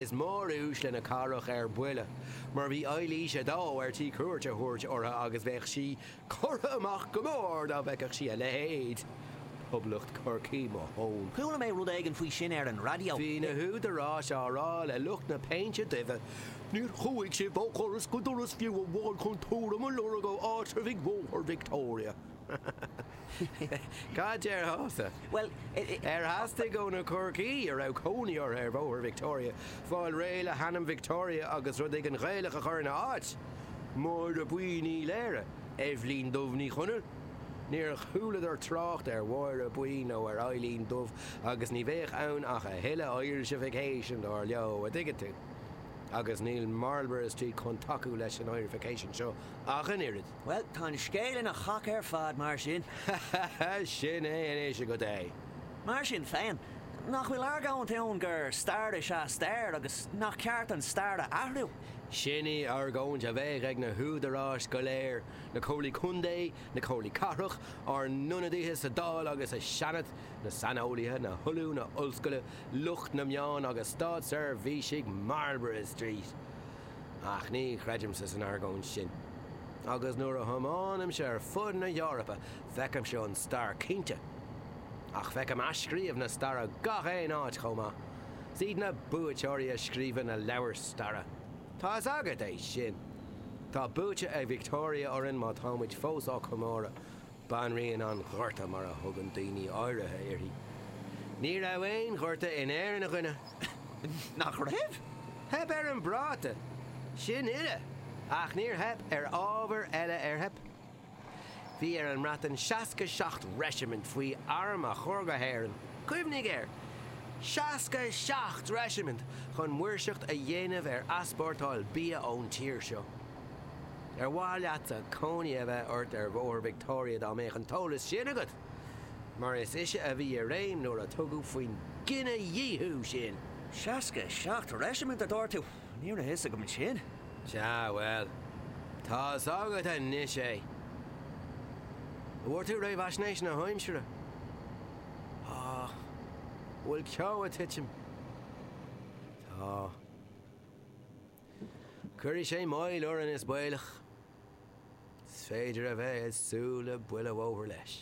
Is móruaisle na cathrach ar buile mar a bhí Eilís a dó ar tí cuairt a thabhairt ortha agus bheadh sí curtha amach go mór dá bhfeicfeadh sí a leithéid. Poblacht Chorcaí mo thón. Chuala mé rud éigin faoi sin ar an raidió. Bhí na húdaráis á rá le lucht na péinte duibhe, Níor chuaigh sibh ó dhoras go doras fiú amháin chun tuairim a lorg ó áitreabhaigh Bhóthar Victoria. Cad déarfása? Bhuel, Ar theastaigh ó na Corcaígh a raibh cónaí orthu ar Bhóthar Victoria fáil réidh le hainm Victoria agus rud éigin Gaelach a chur ina áit? Máire Buí Ní Laoire? Eibhlín Dubh Ní Chonaill? Níor chualadar trácht ar Mháire Buí nó ar Eibhlín Dubh agus ní bheadh ann ach a thuilleadh Irish-ification dar leo, a dtuigeann tú. Agus níl Marlborough Street chun tacú leis an Irish-ification seo ach an oiread. Bhuel, tá an scéal ina chac ar fad mar sin. Sin é anois agat é. Mar sin féin, nach bhfuil argóint ann gur stair is ea stair agus nach ceart an stair a athrú? Sin í an argóint a bheadh ag na húdaráis go léir, na Comhairlí Contae, na Comhairlí Cathrach, ár n-ionadaithe sa Dáil agus sa Seanad, na saineolaithe, na hollúna ollscoile, lucht na meán agus státseirbhísigh Marlborough Street. Ach ní chreidimse san argóint sin. Agus nuair a thiomáinimse ar fud na hEorpa feicimse an stair cinnte. Ach feicim athscríobh na staire gach aon áit chomh maith. 'S iad na buaiteoirí a scríobhann na leabhair staire. Tá fhios agat é sin. Tá buaite ag Victoria orainn má táimid fós á comóradh. Banríon an Ghorta mar a thugann daoine áirithe uirthi. Ní raibh aon ghorta in Éirinn, a dhuine! Nach raibh? Theip ar an bpráta, sin uile, ach níor theip ar bharraí eile ar theip. Bhí ar an mBreatain seasca seacht reisimint faoi arm a chur go hÉirinn, cuimhnigh air! seasca seacht reisimint chun maoirseacht a dhéanamh ar easpórtáil bia ón tír seo. Ar mhaith leatsa cónaí a bheith ort ar Bhóthar Victoria dá mbeadh an t-eolas sin agat? Mar is ise a bhí i réim nuair a tugadh faoin gcinedhíothú sin. 67 reisimint a dúirt tú? Ní raibh a fhios agam sin. Sea, bhuel, tá fhios agat anois é. An bhfuair tú réamhaisnéis na haimsire? Á, bhfuil ceo a' tuitim? Tá. Cuirfidh sé moill orainn is baolach. Is féidir a bheith ag súil le buile bhóthair leis.